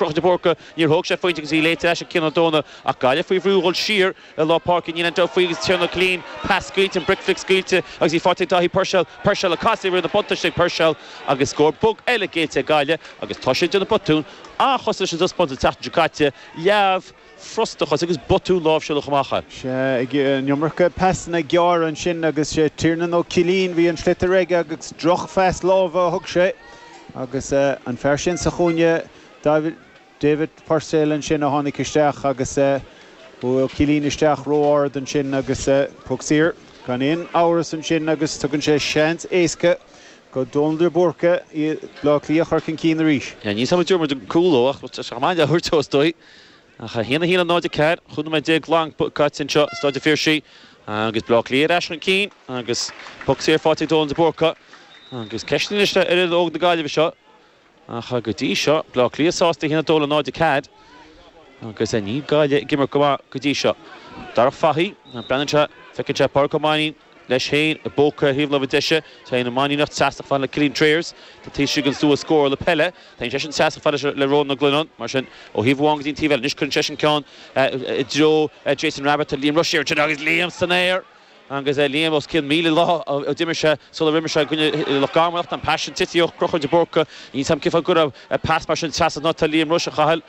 Conchúr de Búrca, níor thóg sé phointe agus í léite leis ag Cian Ó Dónaill ach Gaillimh faoi bhrú a dhul siar i lár páirce. Níl aon deabhadh faoi agus Tiarnán Ó Cillín, pas scaoilte, an bric flic scaoilte agus í faighte ag Dáithí Purcell. Purcell ag casadh ag rith an buntáiste ag Purcell agus scór bog eile géillte ag Gaillimh agus toiseach de na botúin an-chosúil leis an taispeántas an tseachtain seo caite. Leamh. frustachas agus botúin láimhseála chomh maith, an iomarca pasanna gearra ansin agus Tiarnán Ó Cillín bhí an sliotar aige agus drochphas láimhe a thug sé agus an fear sin sa chúinne David Purcell ansin a tháinig isteach agus chuaigh Cillín isteach ró-ard ansin agus poc saor gan aon amhras ansin agus tugann sé seans éasca do Dónal de Búrca Iad Bhleá Cliath a chur chun cinn arís. Níl, ní samhlaítear muid ag cúlú ach tá sé chomh maith le húirt fós dóigh. 1, 1, 0, 4, cúig nóiméad déag glan caite anseo i Stáid an Phiarsaigh agus Baile Átha Cliath ar ais chun cinn agus poc saor faighte ag Dónal de Búrca agus ceist anois ar fhoireann óg na Gaillimhe seo ach go dtí seo Baile Átha Cliath sásta 1, 2, 0, 4, agus níl Gaillimh ag imirt go maith go dtí seo. Darach Fahy, breathnaíonn sé, feiceann sé Pádraig Ó Mainín, leis féin i bpóca thaobh láimhe deise, téann an Mainníneach seasach fann le Cillian Trayers, tá Taoisigh anso a scór le peile, téann seisean seasach fann leis le Rónán Ó Glionnáin, mar sin, ó thaobh amháin go dtí an taobh eile, anois cuireann seisean ceann i dtreo Jason Rabbitte, tá Liam Rushe ansin agus Liam san aer agus Liam os cionn míle lá ó d'imir sé sula bhfuair sé i gcoinne Loch Garman ach tá an pas sin tite ó Chonchúr de Búrca, nílim cinnte go raibh pas mar sin isteach san áit atá Liam Rushe ciallmhar,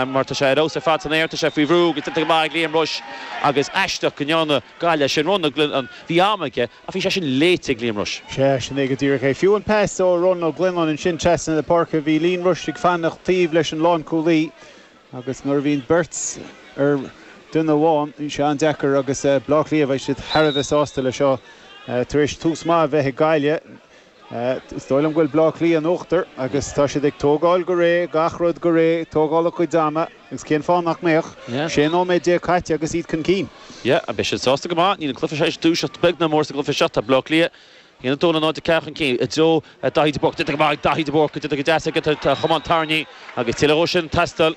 mar tá sé ar fheabhas ar fad san aer, tá sé faoi bhrú agus déanta go maith ag Liam Rushe agus aisteach go ndearna. Gaillimh é sin, Ronan Glennon, bhí am aige ach bhí sé sin léite ag Liam Rushe. Sea, sin é go díreach é. Fiú an pas ó Ronan Glennon ansin trasna na páirce, bhí Liam Rushe ag fanacht taobh leis an lánchúlaí agus nuair a bhíonn beirt ar dhuine amháin, bíonn sé an-deacair agus Bleá Cliath, beidh siad thar a bheith sásta leis seo tar éis tús maith a bheith ag Gaillimh. Is dóigh liom go bhfuil Bleá Cliath in uachtar agus tá siad ag tógáil go réidh, gach rud go réidh, tógáil a gcuid ama agus cén fáth nach mbeadh? 16 nóiméad caite agus iad chun cinn. Yeah, beidh siad sásta go maith. Níl an cluiche seo ag dúiseacht beag ná mór sa gcluiche seo. Tá Bleá Cliath 1-2 0-4 chun cinn i dtreo Daithí de Búrca. Déanta go maith ag Daithí de Búrca, déanta go deas aige an camán tarraingthe agus tuilleadh dhó sin ag teastáil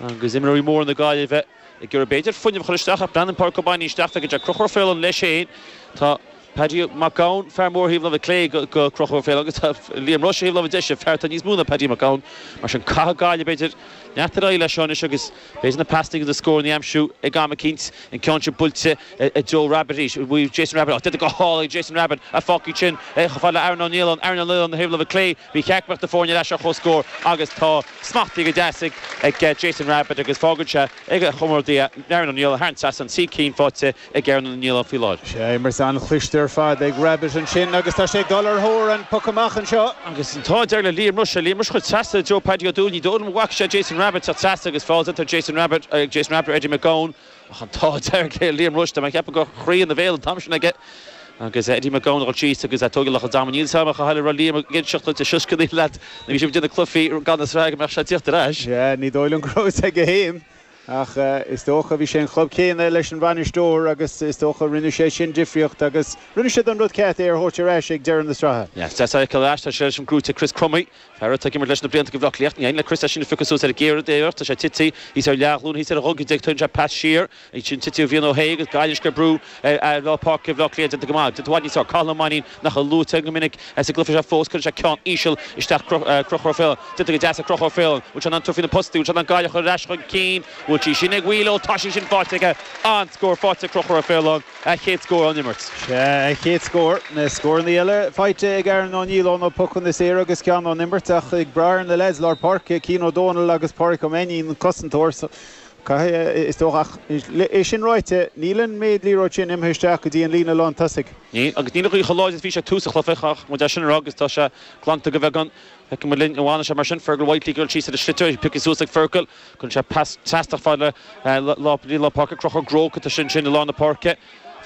agus imreoirí móra na Gaillimhe ag iarraidh b'fhéidir fuinneamh a chur isteach ach breathnaíonn Pádraig Ó Mainín isteach, feiceann sé Conchúr Ó Faoláin leis féin. Tá. Paddy Mac Gabhann, fear mór thaobh láimhe clé go Conchúr Ó Faoláin agus tá Liam Rushe thaobh láimhe deise, fear atá níos mó ná Paddy Mac Gabhann. Mar sin caithfidh Gaillimh b'fhéidir leanacht ar aghaidh leis seo anois agus b'fhéidir na pasanna is na scórannaí aimsiú ag am eicínt, an ceann sin buailte i dtreo Rabbitte arís, bhuaigh Jason Rabbitte, á déanamh go hálainn ag Jason Rabbitte a phocaí sin chomh fada le Aaron Ó Nialláin, Aaron Ó Nialláin thaobh láimhe clé, ba cheart go mbeadh na foirne ar ais ar chomhscór agus tá smachtaithe go deas ag Jason Rabbitte agus fágann sé ag a chomrádaí é Aaron Ó Nialláin thar an trasnán, trí cinn faighte. ag Aaron Ó Nialláin faoi láthair. Sin imirt an-chliste ar fad ag Rabbit ansin agus tá sé ag dul ar thóir an puc amach anseo. Agus tá an dearg le Liam Rushe. Liam Rushe chuir trasna ar Joe Paddy Ó Dúill. Ní dóigh liom an bhfaca sé Jason Rabbit sa trasna agus feall déanta ar Jason Rabbit ag Jason Rabbit ar Eddie McGowan. Ach an tá dearg le Liam Rushe. Dá mbeadh ceapadh go raibh a chroí ina bhéal an t-am sin aige agus Eddie McGowan a dhul síos agus tógadh lucht an dama níl a fhios agam ach a tharla raibh Liam ag inseacht duit a sioscannaí leat nuair a bhí sibh ag déanamh cluichí gan na sraithe go mbeadh sé ag teacht ar ais. Sea, ní dóigh liom go raibh fhios aige fhéin. Ach is dócha, bhí sé ón chlub céanna leis an bhainisteoir agus is dócha rinne sé sin difríocht agus rinne siad an rud ceart, é a thabhairt ar ais ag deireadh na sraithe. Is deas é a fheiceáil ar ais, tá sé leis an gcrúite Chris Crummey, fear atá ag imirt leis na blianta do Bhleá Cliath, ní éiríonn le Chris é sin a phiocadh suas ar an gcéad iarracht, tá sé tití, thíos ar leathghlúin, thíos ar a ghogaide, tugann sé pas siar, ansin tití ó Bhrian Ó hAodha agus Gaillimh anois ag brú ar lár páirce Bhleá Cliath déanta go maith, déanta i bhfad níos fearr, Cathal Ó Mainín. nach luaite go minic sa gcluife seo fós, cuireann sé ceann íseal isteach Conchúr Ó Faoláin, déanta go deas ag Conchúr Ó Faoláin, bhfuil sé in ann tabhairt faoi na postaí, bhfuil sé in ann Gaillimh a chur ar ais chun cinn, bhfuil sí sin ag Wheelo, tá sí sin faighte aige, an-scór faighte ag Conchúr Ó Faoláin, a chéad scór ón imirt. Sea, a chéad scór, na scórannaí eile faighte ag Aaron Ó Nialláin ó na pocanna saora agus ceann ón imirt ach ag brath ar na leaids lár páirce, Cian Ó Dónaill agus Páraic Ó Mainín, cosantóir, Caithfidh, is dócha. Ach é sin ráite, níl an méid liathróid sin imithe isteach go dtí an líne lántosaigh. Níl, agus níl chomh láidir is a bhí sé tús an chluiche, caithfidh muid é sin a rá, agus tá sé glanta go bheagán. Feicfidh muid linn an bhfanann sé mar sin. Fergal Whitely ag dul síos ar an sliotar, é pioctha suas ag Fergal. Cuireann sé pas seasta fad le lár páirce, Conchúr Groarke, tá sé ansin i lár na páirce.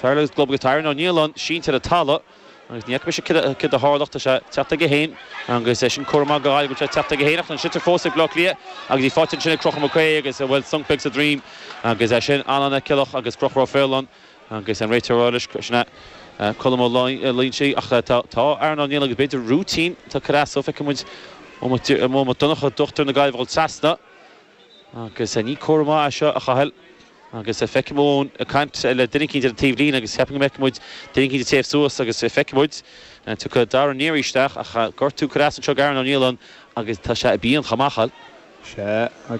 Fergal agus Glover agus tá Aaron Ó Nialláin sínte ar an talamh. Agus ní fhaca mise céard a tharla ach tá sé teacht chuige féin agus é sin comhartha maith go bhfuil sé teacht chuige féin ach tá an sliotar fós ag Bleá Cliath agus í faighte ansin ag Conchúr McHugh agus bhuel sonc beag sa droim agus é sin Alan Ó Ceallach agus Conchúr Ó Faoláin agus an réiteoir uirlis sin é Colm Ó Loingsigh ach tá tá Aaron Ó Nialláin agus b'fhéidir rúitín tá cur as dó feicfidh muid Eoin Mac Donnacha dochtúir na Gaillmhe dhul trasna. Agus ní comhartha maith é seo, a Chathail. Agus feicim Eoin ag caint le duine eicínt ar an taobhlíne agus cheapfainn go bhfeicfidh muid duine eicínt ag téamh suas agus feicfidh muid an dtiocfaidh Darragh Neary isteach ach gortú, cur as anseo do Aaron Ó Nialláin agus tá sé i bpian chomh maith, a Chathail. Sea,